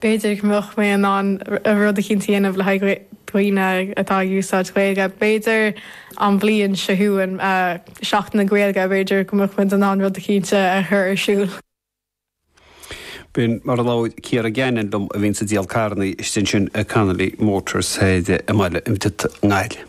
b'fhéidir go mbeadh mé in ann rud eicínt a dhéanamh le haghaidh daoine atá ag úsáid Gaeilge. B'fhéidir an bhliain seo chugainn, Seachtain na Gaeilge, b'fhéidir go mbeadh muid in ann rud eicínt a chur ar siúl. B'in mar a labhair Ciara Gannon liom a bhíonns ag díol carrannaí istigh ansin i Connolly Motors i mBaile an Bhriotaigh i nGaillimh.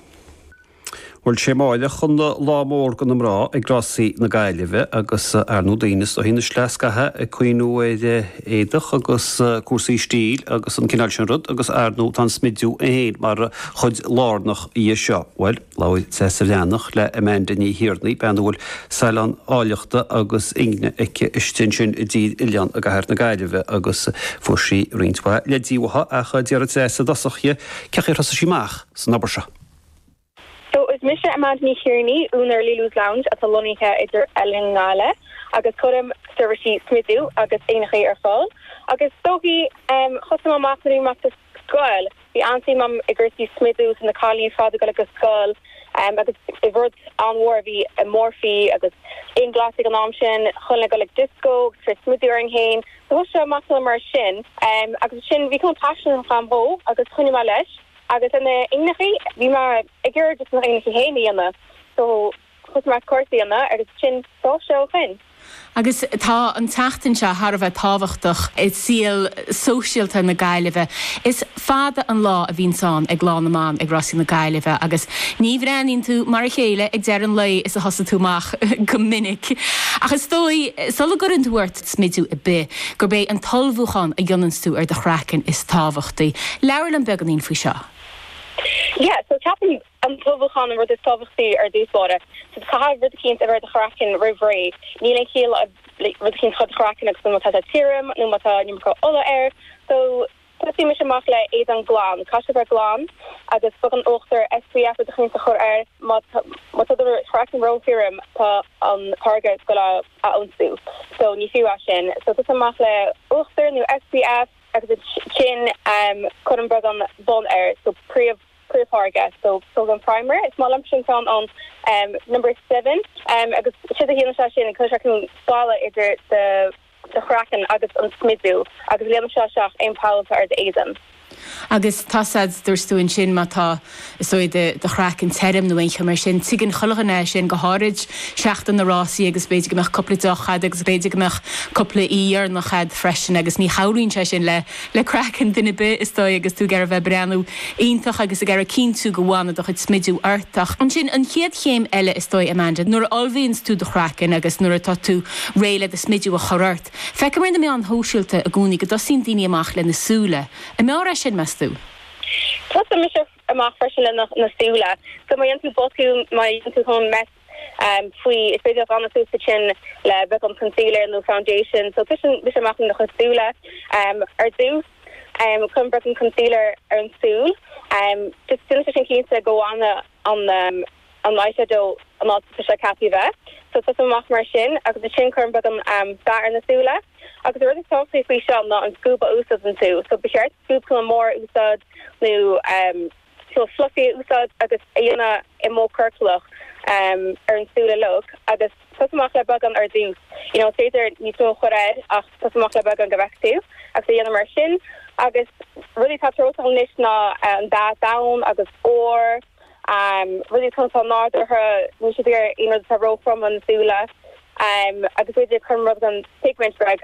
Bhuel is é amáireach an lá mór do na mná ag rásaí na Gaillimhe agus ar ndú daoine sna hoícheanna sleascaithe ag cuimhniú ar éadach agus cúrsaí stíl agus an cineál sin rud agus ar ndú tá an smidiú é féin mar chuid lárnach dhe seo. Bhuel, labhair Saoirse Bhreathnach le Amanda Ní Thiarnaigh, bean a bhfuil salon áilleachta agus ingne aici istigh ansin i dTír Oileáin i gCathair na Gaillimhe agus fuair sí roinnt mhaith leidí uaithi ach d'fhiafraigh Saoirse i dtosach dhi cén chaoi ar thosaigh sí amach san obair seo. So is mise Amanda Ní Thiarnaigh, úinéir Lily's Lounge atá lonnaithe i dTír Oileáin i nGaillimh agus cuirim seirbhísí smidiú agus ingneachaí ar fáil. Agus is dóigh, em, thosaigh mé amach nuair a bhí mé sa scoil, bhí an-suim agam i gcúrsaí smidiú, so na cailíní ar fad ag dul ag an scoil, em, agus bhí rud an-mhór, bhí Morphe agus Inglot ag an am sin, chuile dhuine ag dul ag disco agus ag cur smidiú orainn féin. So thosaigh sé amach mar sin, em, agus ansin bhí cineál paisean agam dhó agus choinnigh mé leis. Agus ar na hingneachaí, bhí mé ag iarraidh m'ingneachaí fhéin a dhéanamh so thosaigh mé cúrsaí a dhéanamh agus b'shin dul sé ó shoin. Agus tá an tseachtain seo thar a bheith tábhachtach i saol sóisialta na Gaillimhe. Is fada an lá a bhíonns ann ag Lá na mBan ag Rásaí na Gaillimhe agus ní bhreathnaíonn tú mar a chéile ag deireadh an lae is a thosaigh tú amach go minic. Ach is dóigh, sula gcuireann tú ort, smidiú ar bith, gurb é an t-ullmhúchán a dhéananns tú ar do chraiceann is tábhachtaí. Labhair liom beagánín faoi seo. Yeah, so ceapaim an t-ullmhúchán an rud is tábhachtaí ar dtús báire. So caithfidh rud eicínt a bheith ar do chraiceann roimh ré. Níl aon chiall rud eicínt a chur ar do chraiceann agus má tá sé tirim nó má tá an iomarca ola air. So. Tosaímis amach le éadan glan. Caithfidh sé bheith glan agus beagán uachtar SPF i do chuimhne a chur air má tá do chraiceann róthirim tá an táirge ag goil á ionsú so ní fiú é sin. So tosaigh amach le uachtar nó SPF agus ansin cuir beagán bun air so príomh príomhtháirge so tóg an primer is maith liomsa an ceann ón number seven agus séard a dhéanann sé sin cuireann sé cineál balla idir do do chraiceann agus an smidiú agus líonann sé isteach aon poll atá ar d'éadan. Agus tá a fhios a'd, dúirt tú ansin má tá, is dóigh, do chraiceann tirim nó aon cheo mar sin, tuigeann chuile dhuine é sin, go háirid seachtain na rásaí agus b'fhéidir go mbeadh cúpla deoch a'd agus b'fhéidir go mbeadh cúpla oíche dheireanach a'd freisin agus ní chabhraíonn sé sin le le craiceann duine 'bith is dóigh agus tú ag iarraidh bheith breathnú iontach agus ag iarraidh cinntiú go bhfanfaidh do chuid smidiú ort ach ansin an chéad chéim eile is dóigh Amanda nuair a ullmhaíonns tú do chraiceann agus nuair atá tú réidh le do smidiú a chur ort. Feicim ar na meáin shóisialta i gcónaí go dtosaíonn daoine amach le na súile. An mb'fhearr é sin, meas tú? Tosaíonn mise amach freisin le na súile. So má dhéanann tú botún, má dhéanann tú kinda mess faoi, is féidir a ghlanadh suas ansin le beagán concealer nó Foundation, so tosaíonn mise amach le na súile. Ar dtús, cuirim beagán concealer ar an tsúil, just déanann sé sin cinnte go bhfanann an eyeshadow an áit atá sé ceaptha a bheith, so tosaím amach mar sin, agus ansin cuirim beagán dath ar na súile. Agus an rud is tábhachtaí faoi seo ná an scuab a úsáideann tú, so ba cheart scuab kinda mór a úsáid nó. So fluffy a úsáid agus a dhéanamh i modh ciorclach ar an súile leog agus tosú amach le beagán ar dtús. You know, is féidir níos mó a chur air ach tosú amach le beagán go bhfeicfidh tú agus a dhéanamh mar sin. Agus rudaí atá treorach agam anois ná an dath donn agus ór, rudaí atá atá nádúrtha, níl siad ag iarraidh aon rud atá róthrom ar na súile. Agus b'fhéidir cuirim rud den pigment rag.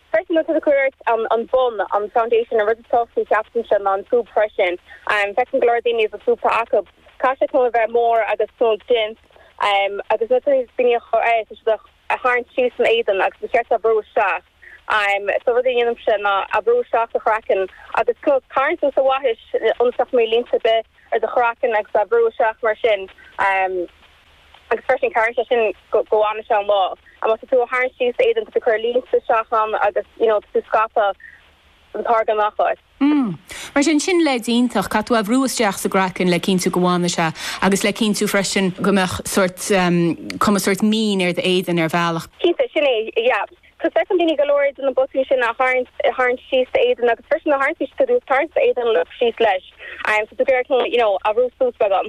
Freisin má tá tú ag cur ort an bun, an foundation, an rud is tábhachtaí ceapaimse ná an scuab freisin. Feicim go leor daoine is an scuab atá acu. Caithfidh sé kinda a bheith mór agus kinda dense agus nuair atá daoine ag cur air tá siad ag tharraingt síos san éadan agus ba cheart é a bhrú isteach. So rud a dhéanaimse ná a bhrú isteach sa chraiceann agus kinda is tarraingt tú sa bhaithis ionas nach mbeidh línte ar bith ar do chraiceann agus a bhrú isteach mar sin. Agus freisin, cabhraíonn sé sin go bhfanann sé an lá. Má tá tú á tharraingt síos san éadan tá tú ag cur línte isteach ann agus you know tá tú ag scaipeadh an táirge amach ort. Mm. Mar sin, sin leid iontach, caithfidh tú a bhrú isteach sa gcraiceann le cinntiú go bhfanann sé agus le cinntiú freisin go mbeadh sórt, em, cuma sórt mín ar d'éadan ar bhealach. Cinnte, sin é, yeah. Feicimse daoine go leor de na botúin sin a tharraingt síos d'éadan agus freisin a tharraingtí siad suas, tarraingt d'éadan síos leis. So tá tú ag iarraidh you know a bhrú suas agam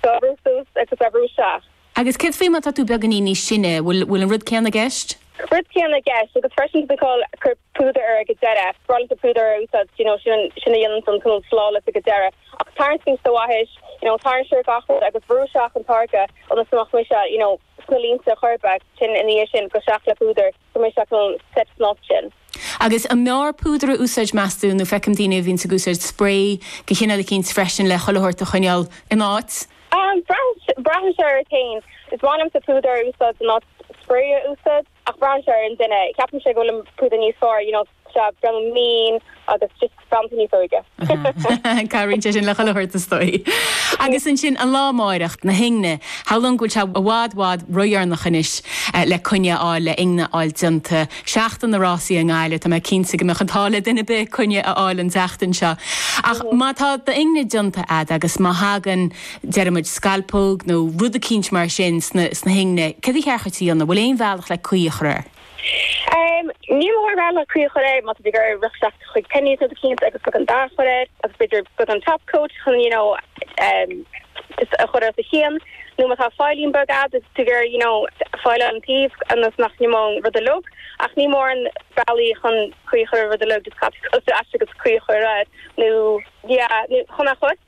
so a bhrú suas agus a bhrú isteach. Agus céard faoi má tá tú beagáinín níos sine, bhfuil bhfuil an rud céanna i gceist? Rud céanna i gceist agus freisin tá call cur púdar air ag deireadh, spreaghlata púdair a úsáid you know sin sin a dhéanann an look flawless ag deireadh. Ach tarraingt síos do bhaithis you know tarraingt siar gach rud agus bhrú isteach an táirge ionas go mbeadh mise you know. sna línte choirbe sin ina dhiaidh sin gabh isteach le púdar go mbrisfeadh an set snáth sin. Agus an mb'fhearr púdar a úsáid meas tú nó feicim daoine a bhíonns ag úsáid spray de chineál eicínt freisin le chuile shórt a choinneál in áit? Braitheann sé ort fhéin. Is maith liomsa púdar a úsáid in áit spray a úsáid ach braitheann sé ar an duine. Ceapaimse go bhfuil an púdar níos fearr you know. Sea, grma mín agus just spalptha níos óige. Cabhraíonn sé sin le chuile shórt is dóigh. Agus ansin an lá amáireach, na hingne, shamhlóinn go bhfuil sé i bhfad bhfad ródheireanach anois le coinne a fháil le ingne a fháil déanta. Seachtain na rásaí i nGaillimh, tá mé cinnte go mbeadh an t-ádh le duine ar bith coinne a fháil an tseachtain seo. Ach má tá d'ingne déanta a'd agus má thagann, deirimid scealpóg nó rud eicínt mar sin sna hingne, céard ba cheart dhuit a dhéanamh? Bhfuil aon bhealach le caoi a chur air? Níl mórán bealaí le caoi a chur air, má tá tú ag iarraidh rith isteach chuig Penneys nó rud eicínt agus beagán dath a chur air agus b'fhéidir beagán top coat chun you know just a chur os a chionn nó má tá file-ín beag agat agus tú ag iarraidh you know fileáil an taobh ionas nach n-imeodh an rud uilig ach níl mórán bealaí chun caoi a chur ar an rud uilig just gabh ar ais agus caoi a chur air nó yeah chun a chos.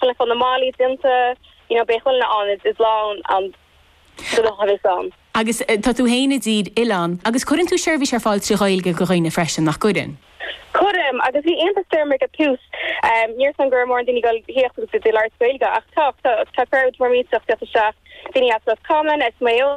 Ag fáil na malaí déanta, you know, beidh chuile an ionad is lán an do lucht a bheas ann. Agus tá tú féin i dTír Oileáin agus cuireann tú seirbhís ar fáil trí Ghaeilge go dhaoine freisin, nach gcuireann? Cuirim, agus bhí iontas orm ag an tús, em, ní raibh a fhios agam go raibh mórán daoine ag goil a thíocht agus iad ag iarraidh labhairt Gaeilge ach tá, tá, tá crowd mór ag tíocht isteach, daoine as Ros Comáin, as Maigh Eo.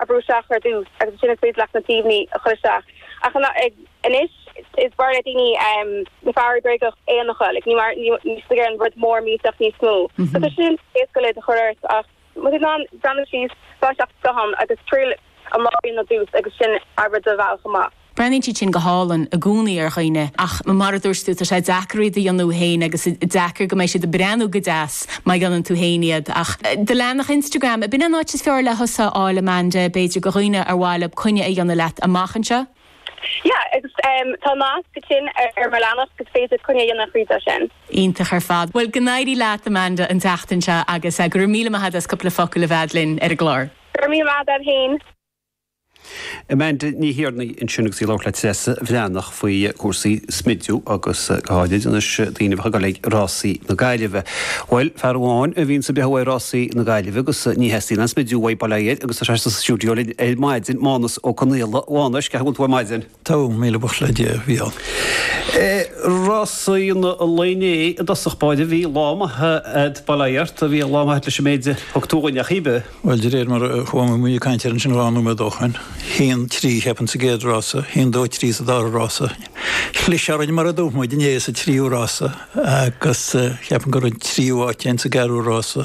a brú isteach ar dtús agus ansin ag triail like na taobhannaí a chur isteach. Ach anois is fearr le daoine na fabhraí bréagacha aonaracha, like, ní mar, níl siad ag iarraidh an rud mór millteach níos mó. So tá sin éasca go leor iad a chur ort ach má tá tú in ann breathnú síos, fág isteach do scáthán agus triail an lár a dhéanamh ar dtús agus ansin obair do bhealach amach. Breathnaíonn siad sin go hálainn i gcónaí ar dhaoine ach mar a dúirt tú, tá sé deacair iad a dhéanamh féin agus deacair go mbeidh siad ag breathnú go deas má dhéanann tú féin iad. Ach do leathanach Instagram, ab in an áit is fearr le thusa a fháil, Amanda, b'fhéidir go dhaoine ar mhaith leo coinne a dhéanamh leat amach anseo? Yeah, agus tá nasc ansin ar mo leathanach agus is féidir coinne a dhéanamh thríd sin. Iontach ar fad. Bhuel, go n-éirí leat, Amanda, an tseachtain seo agus go raibh míle maith agat as cúpla focal a bheith a'd linn ar an gclár. Go raibh míle maith agat féin. Amanda Ní Thiarnaigh ansin agus í ag labhairt le Treasa Bhreathnach faoi chúrsaí smidiú agus go háirid anois daoine a bheith ag dul ag Rásaí na Gaillimhe. Bhuel, fear amháin a bhíonns ag breathnú go maith ag Rásaí na Gaillimhe agus ní theastaíonn aon smidiú uaidh, bail ó Dhia air, agus tá sé sa stiúideo linn ar maidin, Mánus Ó Conghaile. Mhánuis, cén chaoi a bhfuil tú ar maidin? Togha, míle buíochas le Dia, a Eibhlín. Rásaí an lae inné i dtosach báire bhí lá maith a'd, bail ó Dhia ort, bhí lá maith a'd leis an méid a thug tú dhúinn ar chaoi ar bith. Bhuel de réir mar a chuaigh, bhí muid ag caint air ansin dhá nóiméad ó shoin, haon trí cheapfainn sa gcéad rása, haon dó trí sa dara rása. Chlis orainn mar a dúirt muid inné sa tríú rása agus cheapfainn go raibh an tríú áit fhéin sa gceathrú rása.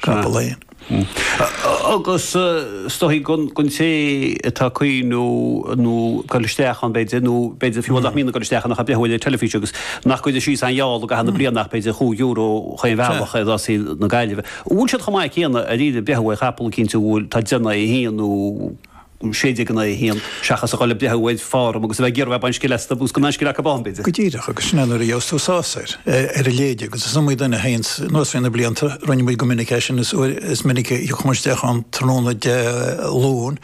Chapall aon. Agus is dóichí gon té atá ag cuimhniú ar ghoil isteach ann b'fhéidir nó b'fhéidir fiú nach mbíonn ag goil isteach ann ach ag breathnú ar an teilifís agus nach gcuireann síos aon gheall i gcaitheamh na bliana ach b'fhéidir chúig euro chaon bhealach i Rásaí na Gaillimhe. An bhfuil siad chomh maith céanna dáiríre breathnú ar chapall eicínt a bhfuil tá déanamh é féin nó um 1601, seachas a dhul ag breathnú ar form agus a bheith ag iarraidh baint scil astu, agus gan aon scil acu ann, b'fhéidir. Go díreach, agus sin é nuair a gheobhas tú sásamh ar a leithéid, agus is iomaí duine a théann anuas thrí na blianta, rinne muid go minic é sin, is uair is minic a thiocfadh muid isteach ann tráthnóna Dé Luain,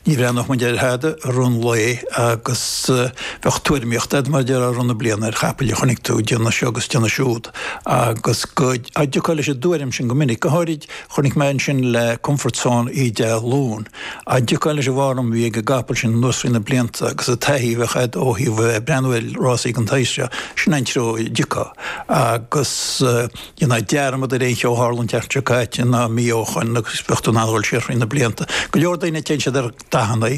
ní bhreathnódh muid ar thada i rith an lae, agus bheadh tuairimíocht agat, mar a déarfá, i rith na bliana ar chapaill a chonaic tú, ag déanamh seo agus ag déanamh siúd, agus go dtiocfá leis an dtuairim sin go minic, go háirid, Chonaic mé ansin le Comfort Zone oíche Dé Luain, go dtiocfá leis an bhform a bhí ag an gcapall sin anuas thrí na blianta agus an taithí a bheadh agat ó thaobh breathnú ar rásaí an tsaoil seo, sin an treo a dtiocfá. Agus dhéanfá dearmad ar aon cheo a tharla an tseachtain seo caite ná mí ó shin agus bheadh tú in ann a dhul siar thrí na blianta. Go leor daoine téann siad ar. dathanna,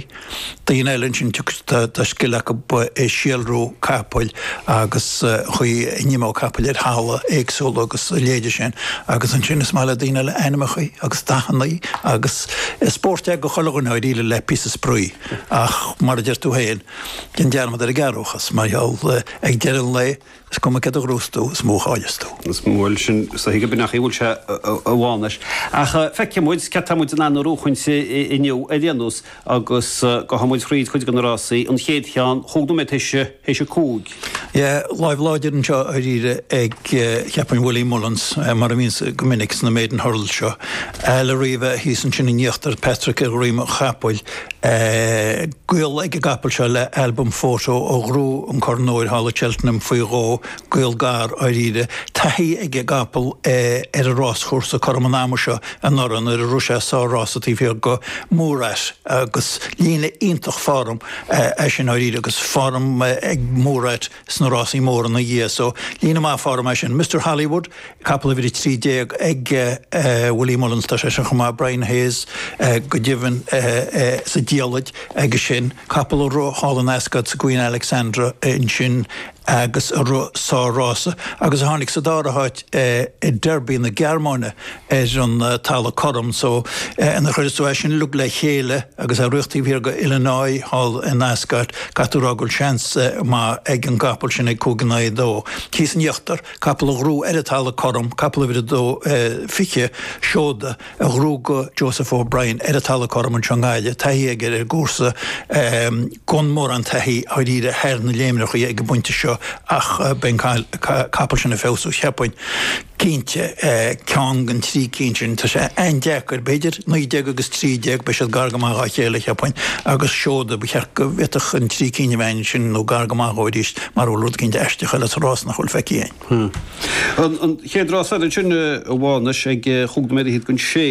daoine eile ansin tá scil acu i síolrú capaill agus an chaoi a n-imeoidh capaill ar thalamh éagsúla agus a leithéide sin agus ansin is maith le daoine eile ainmneacha agus dathanna agus is spórt é do chuile dhuine dháiríre le píosa spraoi ach mar a deir tú féin, déan dearmad ar an gcearrbhachas mar gheall ag deireadh an lae. Is cuma céard a ghnóthós tú, is mó a chailleas tú. Bhuel, sin é an chaoi go baileach a bhfuil sé, a Mhánuis. Ach feicfidh muid céard tá muid in ann a ghnóthachaint inniu ar aon nós agus gabhfaidh muid thríd chuid de na rásaí, an chéad cheann, chúig nóiméad théis a cúig. Yeah, lámh láidir anseo dháiríre ag, cheapfainn, Willie Mullins, mar a bhíonns go minic sna maiden hurdles seo. Al Arrivee thíos ansin in íochtar, Patrick ar dhroim an chapaill. Gaol ag an gcapall seo le Al Boum Photo a ghnóthaigh an Corn Óir thall i Cheltenham faoi dhó, gaol gar, dháiríre. Taithí ag an gcapall ar an ráschúrsa cothrom an ama seo anuraidh nuair a rith sé sár rása taobh thiar go Murat agus líne iontach form é sin dháiríre agus form ag Murat sna rásaí móra ina dhiaidh, so líne maith form ansin. Mister Hollywood, capall uimhir 13 ag Willie Mullins, tá seisean chomh maith, Brian Hayes go deimhin sa diallait aige sin, capall a rith thall in Ascot sa Queen Alexandra ansin agus a rith sár rása agus a tháinig sa dara háit i Derby na Gearmáine. ar an talamh cothrom so nuair a chuireas tú é sin uilig le chéile agus é ag tíocht taobh thiar go Illinois thall in Ascot, caithfidh tú rá go bhfuil seans maith ag an gcapall sin ag cúig in aghaidh a dó. Thíos in íochtar, capall a ghnóthaigh ar an talamh cothrom, capall uimhir a dó fiche, Seoda, a ghnóthaigh go Joseph O'Brien ar an talamh cothrom anseo i nGaillimh, taithí aige ar an gcúrsa, gan mórán taithí dháiríre thar na léimreachaí ag an bpointe seo ach beidh an capall sin ag feabhsú cheapfainn. Cinnte, ceann den trí cinn sin. Tá sé an-deacair, b'fhéidir naoi déag agus trí déag, beidh siad gar go maith dhá chéile, cheapfainn, agus seoda, ba cheart go bhféadfadh an trí cinn a bheith ansin nó gar go maith dhó arís, mara bhfuil rud eicínt aisteach eile sa rása nach bhfuil feicthe againn. An chéad rása eile ansin, a Mhánuis, ag cúig nóiméad fhichead chun a sé.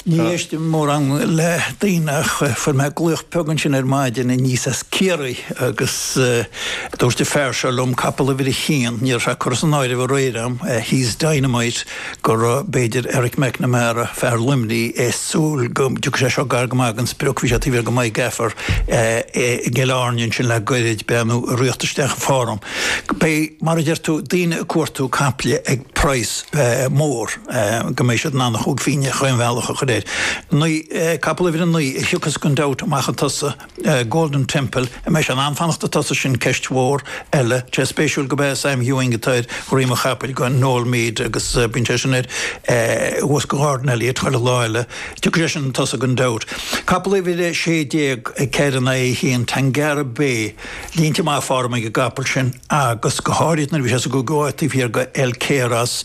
Ní éistim mórán le daoine ach fuair mé glaoch beag ansin ar maidin aníos as Ciarraí agus dúirt an fear seo liom, capall uimhir a haon, ní raibh sé curtha san áireamh aréir a'm, he's dynamite, go raibh b'fhéidir Eric McNamara, fear Luimnigh, ag súil go dtiocfadh sé seo gar go maith den sprioc, bhí sé taobh thiar go My Gaffer i gCill Airne ansin le gairid, breathnú ag tíocht isteach chun foirm. Beidh, mar a deir tú, daoine ag cuartú caiple ag praghas mór. go mbeidh siad in ann a chúig phighne chaon bhealach a chur air. Naoi, capall uimhir a naoi a thiocfas gan dabht amach chun tosaigh, Golden Temple, an mbeidh sé in ann fanacht chun tosaigh sin ceist mhór eile. Tá sé spéisiúil gurb é Sam Ewing atá ar dhroim an chapaill go Noel Meade agus bíonn sé sin air thuas go Ghordon Elliott chuile lá eile. Tiocfaidh sé sin chun tosaigh gan dabht. Capall uimhir a sé déag, Kerana Aoidhín, Tangaroa Bay, Línte maith foirm ag an gcapall sin agus go háirid nuair a bhí sé sa gcogadh taobh thiar go El Cairos.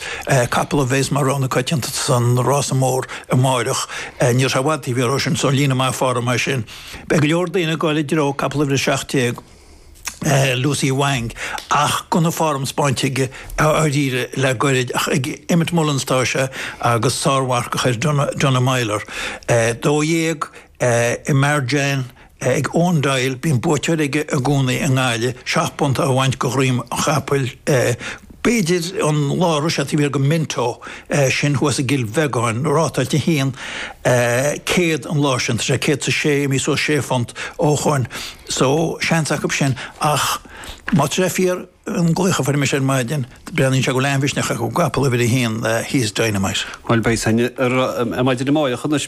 Capall a bhéas mar rogha na coitianta san rása mór amáireach. Ní raibh sé i bhfad taobh thiar dhó sin so líne maith foirm é sin. Beidh go leor daoine ag dul i dtreo capall uimhir a seacht déag Lucy Wang ach gan aon foirm spáinte aige a dháiríre le goirid ach ag Emmet Mullins atá sé agus sármharcach air Donagh Meyler. Dó dhéag. I Merjén, ag Eoin Doyle, bíonn buaiteoir aige i gcónaí i nGaillimh, seacht bpunta a bhaint go dhroim an chapaill, b'fhéidir an lá a raibh sé taobh thiar den Minto, sin thuas i gCill Bheagáin, rátáilte 1, 100 an lá sin, tá sé 106 imithe suas sé phunt ó shoin so seans acu sin ach má tá sé fíor an glaoch a fuair mise ar maidin, breathnaíonn sé go bhfuil an-mhisneach acu, an capall uimhir 1, he's dynamite. Bhuel beidh san ar maidin amáireach anois.